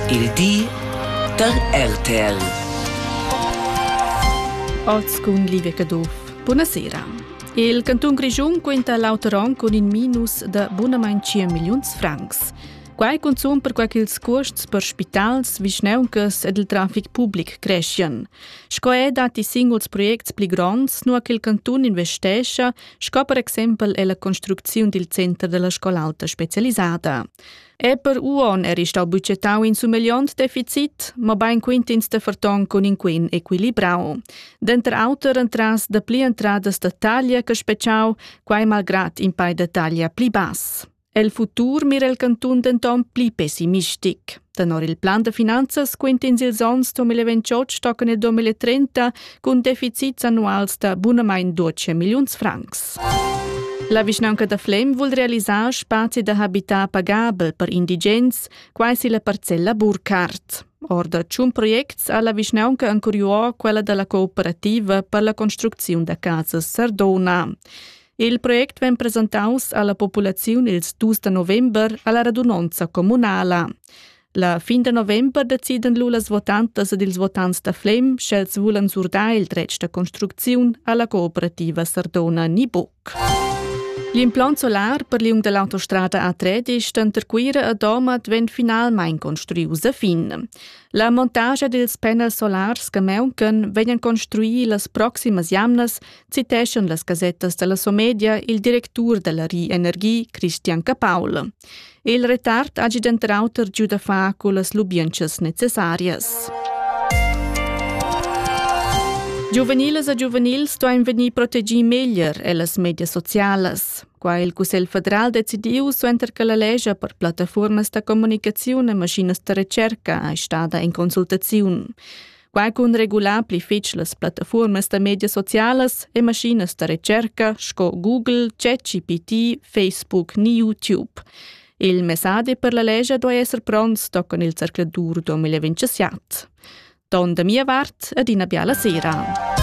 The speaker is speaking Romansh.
Il di da RTL. Oz cun Livia Caduff. Buonasera. Il cantun Grischun quinta l'auter onn cun in minus da bunamain 5 milliuns francs. Quai cunzun perquai ch'ils cuosts per spitals, vischnauncas ed il trafic public creschian. Sco è dati singuls projects pli gronds, nua che il cantun investescha, sco per exempel è la construcziun dil center della scola alta specialisata. per uon eri stau bucetau in sumegliont deficit, mobein quintins de ferton cun in quin equilibrau. Denter auter entras de pli entradas de taglia che speciau, quai malgrat in pai de taglia pli bass. El futur mira il cantun denton pli pessimistic. Tenor il plan de finanzas quintins ils onns 2028 stocken e 2030 cun deficits annuals da bunamain 12 milliuns francs. La vischnaunca da Flem vul realisar spazi da habitar pagabel per indigens, quai si la parcella Burkhardt. Or da tschun projects ha la vischnaunca ancuriuo quella dalla cooperativa per la construcziun da casas Sardona. Il project vegn presentaus alla populaziun ils dus da november alla radunonza communala. La fin da november decidan lu las votantas ed ils votants da Flem, sch'els vulan surdar il dretg da construcziun alla cooperativa Sardona ni buc. L'implant solar per liung dall'autostrada A3 denter Cuira e Domat vegn finalmein construius a fin. La montagia dils panels solars che mauncan vegnan construir las proximas jamnas citeschan las gasettas dalla Somedia il directur dalla Ri Energie Christian Capaul. Il retard hagi denter auter giu da far cullas lubientschas necessarias. Giuveniles e giuvenils stoin vegnir protegì meglier ellas medias socialas. Qua il Cussegl federal decidiu suenter che la legge per plattaformas da comunicazione e maschinas da ricerca è stada in consultaziun. Quai cun regular pli fitg las plattafuormas da medias socialas e maschinas da recerca sco Google, ChatGPT, Facebook ni YouTube. Il messadi per la lescha duai esser pronts toccon il zercladur 2027. Don da mia vart ed ina biala sera.